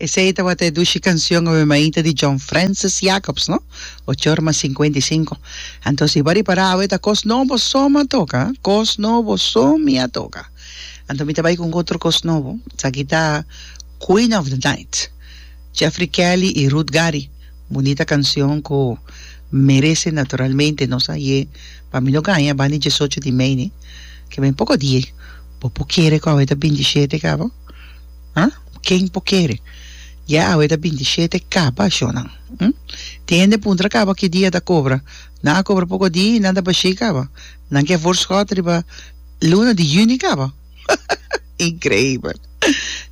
Esei tabata e dushi cancion awe mainta di John Francis Jacobs, no? Ochor mas cincuenta y cinco. Anto si bo a ripara awe ta cos nobo so mi a toca, ha? Cos nobo so mi a toca. Anto mi ta bai cu un otro cos nobo. Esaki ta Queen of the Night, Jeffrey Kelly y Ruth Gary. Bunita cancion cu merece naturalmente nos a ye pa mi lo gaña banda di diesocho di mei, ne? Ke mi poco di e. Bo por kere cu awe ta bintisiete cabo? Ha? Ken bo kere? Ya awe ta bintisiete kaba shonan. Hm? Tin hende puntra kaba ki dia ta kobra. Nan a kobra poko di i nan ta bashei kaba. Nan ke vorskot riba luna di juni kaba. Increibel.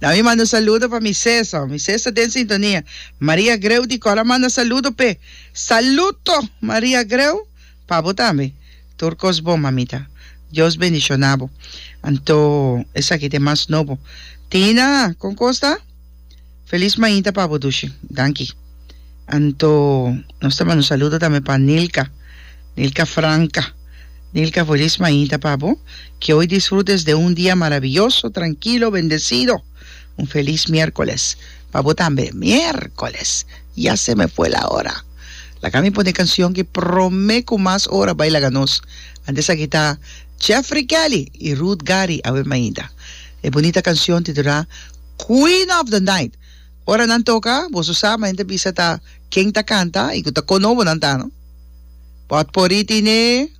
Nan mi manda saludo pa mi sesa. Mi ses ta den sintonia. Maria Greu di Kora manda saludo p'e. Saluto Maria Greu. Pa bo tambe. Tur kos bon, mamita. Dios bendiciona bo. Anto, esaki ta e mas nobo. Tina, kon kos ta? Feliz mainta pa bo, Dushi. Danki. Anto, nos ta manda un saludo tambe pa Nilka. Nilka Franca. Nilka, feliz mainta pa bo. Ke hoy disfrutes den un dia maraviyoso, trankilo, bendecido. Un feliz mierkoles pa bo tambe. Mierkoles! Ya se me fue la hora. Laga mi pone cancion ki prome cu mas ora bay laga nos. Antes aki ta Jeffrey Kelly y Ruth Gary awe mainda. E bunita cancion titula Queen of the Night. Ora nan toca boso sa ma hende bisa ta ken ta canta y cu ta conobo nan ta no. Potpourri tine.